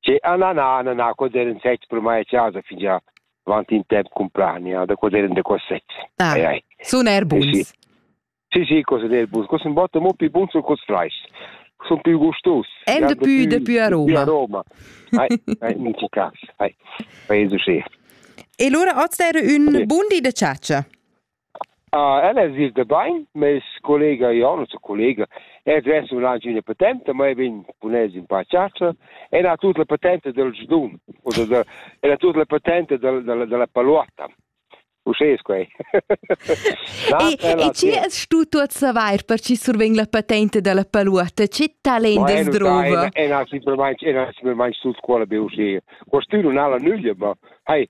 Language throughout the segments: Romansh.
Che ananana na cos eran sets per mai a chasa fingià avant in temp cumplania da cos eran daco sets. Ah, ai, ai. Sun eir buns. Eh, sì. Sì, sì, cos eran buns. Cos in botta mo più buns o cos frais. Son più gustos. En de più, de più aroma. Più aroma. Ai, ai, in che cas. Ai, paese schön. E allora oggi era un buon di de ciaccia. Ella es gnüda bain, meis collega Jon, nossa collega, ed ves ün aint üna patenta, ma vegn cun els ün pa a chatscha e ella ha tut la patenta dal giudun o da da ella ha tut la patenta da da da la paluotta. Uschè es quai. E chi es stu tuot savair per chi survegn la patenta da la paluotta? Che talent es druva? E na simplamaing e na simplamaing tut quella be uschè. Quest'ün nun ha la nüglia, ma hai,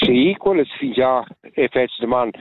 Sì, quellas fingià effectivamaing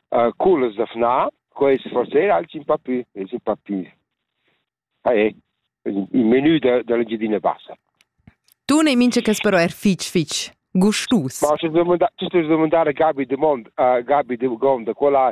uh, cullas da fna. Quest forser alch in pa pü, es un pa pü. Ah, è il menü da, dell'Engiadina Bassa. Tu ne mincha cas però er fich fich gustus. Ma tu domandas domandare Gabi de Mond, uh, Gabi de Gonda, quella